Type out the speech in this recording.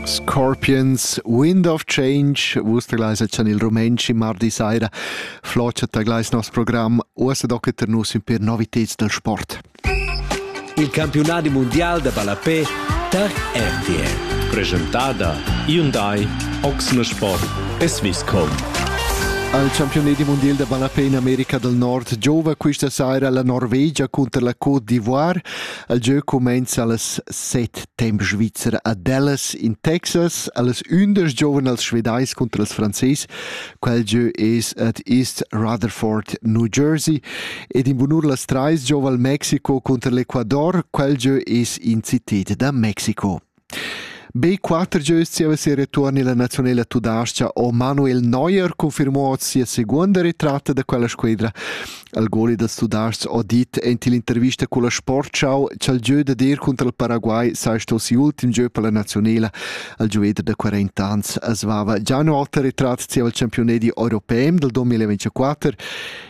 Scorpions, Wind of Change, vus tagleis chan il Rumenschi mardi saira, flocia tagleis nos program, uossa docet ter nus in per noviteds del sport. Il campionadi mondial da ballapé tar RTL. Presentada Hyundai Oxner Sport e Swisscom. Al campionadi mondial da ballapé in America del Nord giova questa saira la Norvegia contro la Côte d'Ivoire. El gieu cumenza allas set temps svizzer a Dallas in Texas, allas undisch giovan els svedais contra els frances. Quel gieu es at East Rutherford, New Jersey, ed in bunur las trais giova al Mexico contra l'Ecuador. Quel gieu es in cited da Mexico. Be quatter gieus zieva sia retuorn illa naziunela tudais-cha ho Manuel Neuer confirmò sia seguonda retratta da quella squedra. Il goli dals Tudais-chs ho dit aint ill'intervista culla Sportschau cha'l gieu dad ir cunter il Paraguay saja sto si'ultim gieu per la naziunela. Il giuveder da 40 ans as vava già ün oter retrat zieva il champiunedi europem dal 2024